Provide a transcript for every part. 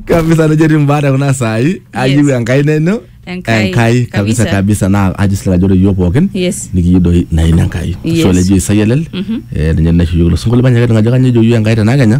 kabisa nejo etii mbaata kuna saai ayieu enkai neno Enkai, enkai kabisa kabisa. kabisa naa ajo sila ajo ore iyiook pookin Yes. nikiyieu doi naina enkai Yes. ashu olejo isai elel eh, ninye naisho iyiook ilo sinkolio manyaketing ajo kanyo ejo iyiook enkai tenakenya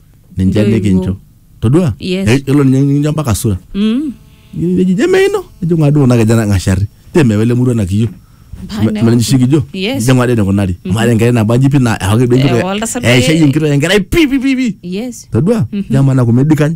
ninche Ndio hivyo. nikincho todua Yes. Eh, yiolo ninye nikincho mpaka sura Mm. neji jeme ino ejo ng'adu kuna kijana ng'ashari teme wele murua nakiyo Bana. menishikijo Yes. ijo ng'ade nikunari mare enkerai nabaji pi na ewaki duo Eh, enkitok oltasat eh, eishayie eh. enkitok enkerai pi pi pi pi Yes. todua jamana kumedikany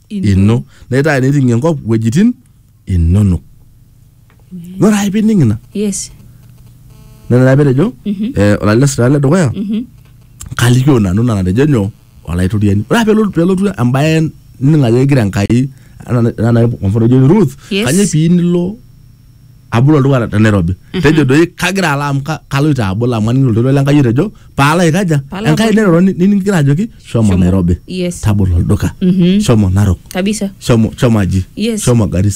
ino naitaa eneting enkop wuejitin inonok nore ake pining ina yes nena taa petejo eh, olalila sira le dukuya kalikio nanu ina natejo nyoo olaitoriani ore ake pelotu- pelotu embaye nining ajo kegira enkai anaa- anaa kwa mfano ejo Ruth Yes. kanyoo pii nilo abul olduka te- te Nairobi tejo doi kagira alo amu ka- kaloito abul amu aning'ito oltoilo le Enkai otejo paalo aikaja Paalo Enkai abol. neroro ni- niningira ajoki shomo Shomo. Nairobi Yes. tabolo olduka Mhm. shomo Narok kabisa shomo shomo aji Yes. shomo Garissa